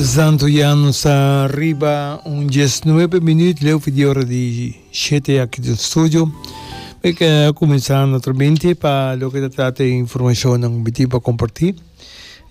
Santo Yano sa riba un dies nuebe minüt leu fi di ora di shete aki den studio. Mi ta kuminsá naturalmente pa loke ta trata di informashonnan mi tin pa kompartí.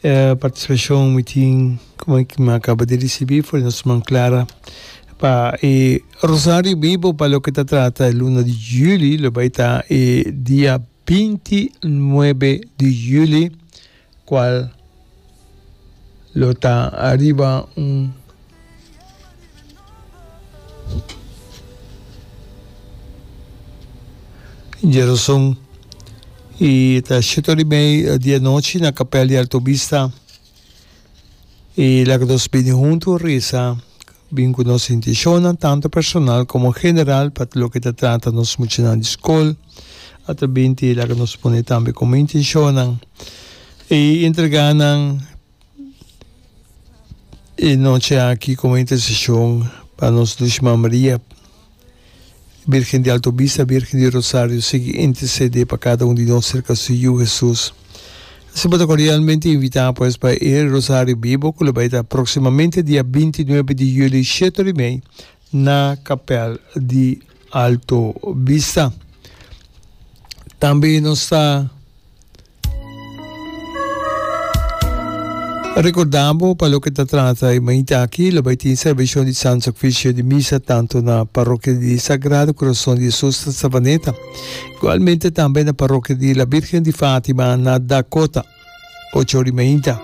E partisipashon mi tin, kuma ki mi a kaba di risibí for di nos man Clara, pa e Rosario Bibo pa loke ta trata e luna di yüli, lo bai ta e dia binti nuebe di yüli. cual lo ta ariba un djeroson y ta shito di mei di e nochi na capel di Altovista y laga nos bini hunto resa. Bin ku nos intishonnan tantu personal komo general pa loke ta trata nos muchanan di skol. Ata bin ti laga nos pone tambe komo intishonnan e entregá nan e nochi aki komo interseshon pa nos Lushman Maria. Birgen di Alto Bista, Birgen di Rosario sigui intercedé pa cada un di nos cerca su Yu Hesus. Si bo ta cordialmente invitá pues pa e Rosario Bibo cu lo bay ta proximamente dia binti nuebe di Juli shete ora y mei na Capel di Alto Bista. Tambe nos ta. Recordá bo pa loke ta trata e mainta aki, lo bai tin serbacion di Santo Sacrificio di Misa tanto na Parroquia di Sagrado Corazon di Jesus na Savaneta, igualmente tambe na Parroquia di La Virgen di Fatima na Dakota, ocho ora di mainta.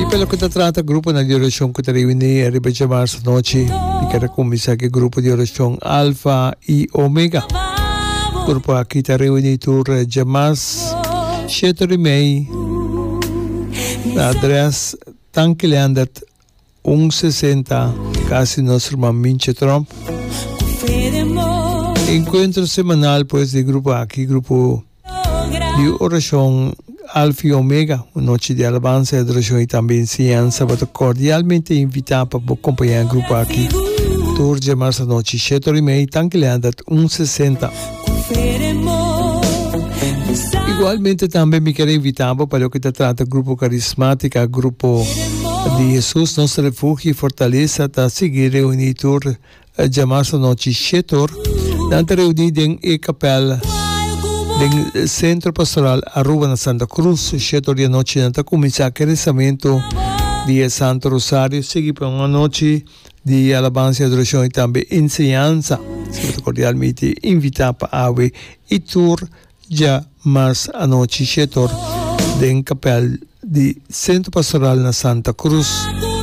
Y pa loke ta trata gruponan di oracion cu ta reuní riba dje marzo anochi, mi ker a cuminsa cu e grupo di oracion Alfa y Omega. Grupo aki ta reuní tur dje mas shete ri mei na adres Tanki Leandert, Un sesenta casi nos rma Minche Tromp. Encuentro semanal pues di grupo aki grupo di oracion Alfa y Omega un nochi di alabansa y adoracion y tambe enseñansa bo ta cordialmente invita pa bo compaña grupo aki tur dje marsa nochi shet ora y mei tanki lea dat un sesenta. Igualmente tambe mi ker invita bo pa loke ta trata Grupo Karismatika, Grupo di Hesus, nos Refugi i Fortalesa ta sigui reuní tur djamarsa nochi shét or. Nan ta reuní den e kapèl den Sentro Pastoral Aruba na Santa Cruz. Shét or di anochi nan ta kuminsá ku e resamentu di e Santu Rosario, sigui pa un anochi Di alabansa i adorashon i tambe enseñansa. Si bo ta kordial mi te invitá pa awe i tur dja mas anochi shetor den kapèl di Sentro Pastoral na Santa Cruz.